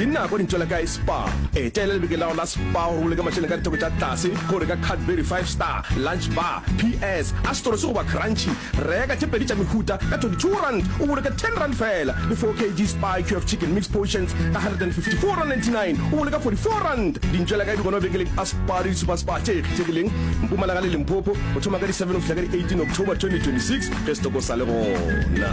ke nako dintšo la kae spa etela lebeke lago la spa gore o leka mašeleng ka ditheko tša tlase go reka cadbury five star lunch bar ps astoro se goba crunchy reka tše pedi tša mehuta ka 22 rand o boloke 10 rand fela le 4 kg spa cure of chicken mix potions ka 154 rand 99 o boloka 44 rand dintšo la kae di gona bekeleng a spa le disupa spa tše kgethegileng mpumalanga le limpopo go thoma ka di 7 go fihla ka di 18 october 2026 ge setoko sa le gona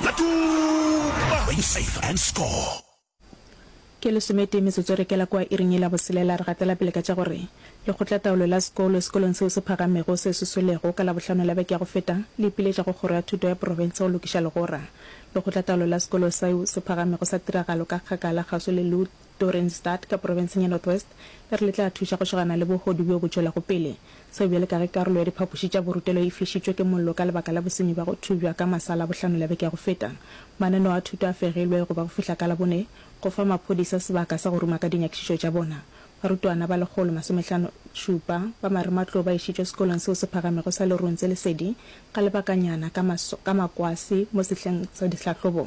Batuba! Win safe and score! Ke lesometee metsotso e re kela kua iring ye la boselela, re gatela pele ka tša gore Lekgotlataolo la Sekolo, sekolong seo se phagamego se se swelego, ka Labohlano la beke ya go feta, le ipiletša go Kgoro ya Thuto ya Profense go lokiša legora. Lekgotlataolo la Sekolo seo se phagamego sa tiragalo ka kgakala kgauswi le Lutz. Dorenstadt ka profenseng ya North West e re le tla thuša go šogana le bohodu bjo bo tšwelago pele. Seo bjale ka ge karolo ya diphapoši tša borutelo e flišitšwe ke mollo ka lebaka la bosenyi bja go thubja ka masa Labohlano ya beke ya go feta, mananeo a thuto a fegilwe go ba go fihla ka Labone go fa maphodisa sebaka sa go ruma ka dinyakišišo tša bona. Barutwana ba lekgolo masomehlano šupa ba marematlou ba išitšwe sekolong seo se phagamego sa Leruntse Lesedi ga lebakanyana ka makwase mo sehleng sa dihlahlobo